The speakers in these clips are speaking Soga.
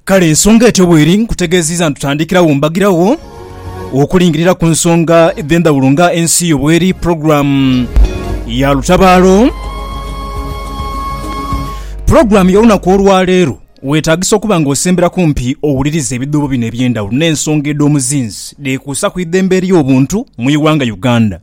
Kale ensonga etyo bweri, nkutegeziiza nitutandikirawo mbagirawo okulingirira ku nsonga edh'endhawulo nga ensi yo bweri, pulogulaamu ya lutabaalo. Pulogulaamu y'olunaku olwaleero weetagisa okuba nga osembera kumpi owulirize ebidhuubo bino eby'endhawulo n'ensonga edh'omuzinzi dhekuusa ku idhembe ery'obuntu mu ighanga Uganda.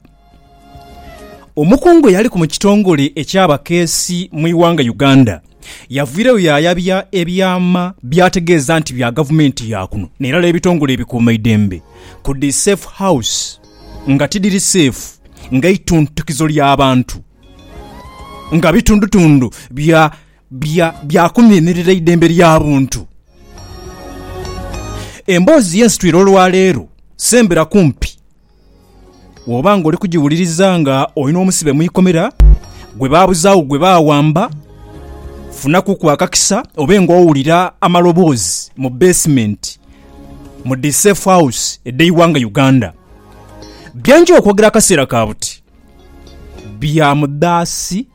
Omukungu eyaliku mu kitongole eky'abakeesi mu ighanga Uganda yavairegho yaayabya ebyama by'ategeeza nti bya gavumenti ya kuno n'erala ebitongole ebikuumaidembe ku dhi Safe House nga tidhiri seefu nga ituntukizo lya bantu nga bitundutundu bya kunhimirira idembe lya buntu. Emboozi y'ensitwire olwaleero sembera kumpi Bw'oba ng'oli kugiwuliriza nga oli n'omusibe mu ikomera gwe baabuzaagho gwe baawamba, funakuku akakisa obe ng'owulira amaloboozi mu beesimenti mu dhi Safe House edh'eighanga Uganda. Bye nja okwogera akaseera ka buti bya mudhaasi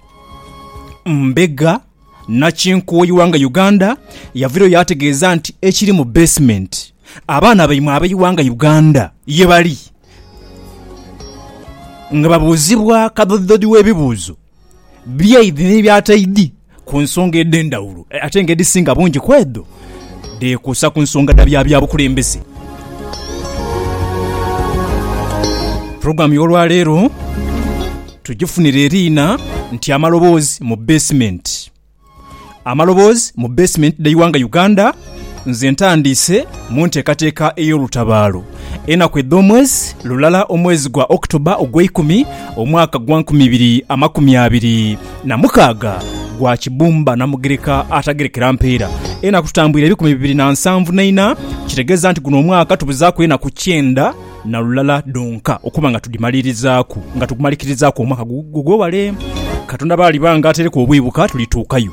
mbega. Nakinkuuyi wange Uganda yavirayo yaategeeza nti ekiri mu basement abaana baimwe abeighanga Uganda ye bali nga babuuzibwa kadhodidhodi w'ebibuuzo byaidhi n'ebyataidhi ku nsonga edh'endhawulo ate nga edhisinga bungi ku edho dheekuusa ku nsonga dha bya byabukulembeze. Pulogulaamu y'olwaleero tugifunire eriina nti Amaloboozi mu Beesimenti. Amaloboozi mu beesimenti dh'eighanga Uganda Nze ntandiise mu nteekateeka ey'olutabaalo enaku edh'omwezi lulala omwezi gwa October ogweikumi omwaka gwa nkumi ibiri amakumi abiri na mukaaga gwa kibumba na mugereka atagerekera mpeera. Enaku tutambwire ebikumi bibiri na nsanvu na ina, kitegeeza nti guno omwaka tubuzaaku enaku kyenda na lulala dhonka okuba nga tudhimalirizaaku, nga tugumalikirizaaku omwaka gugwewale. Katonda bwaliba nga atereku obwibuka tulituukayo.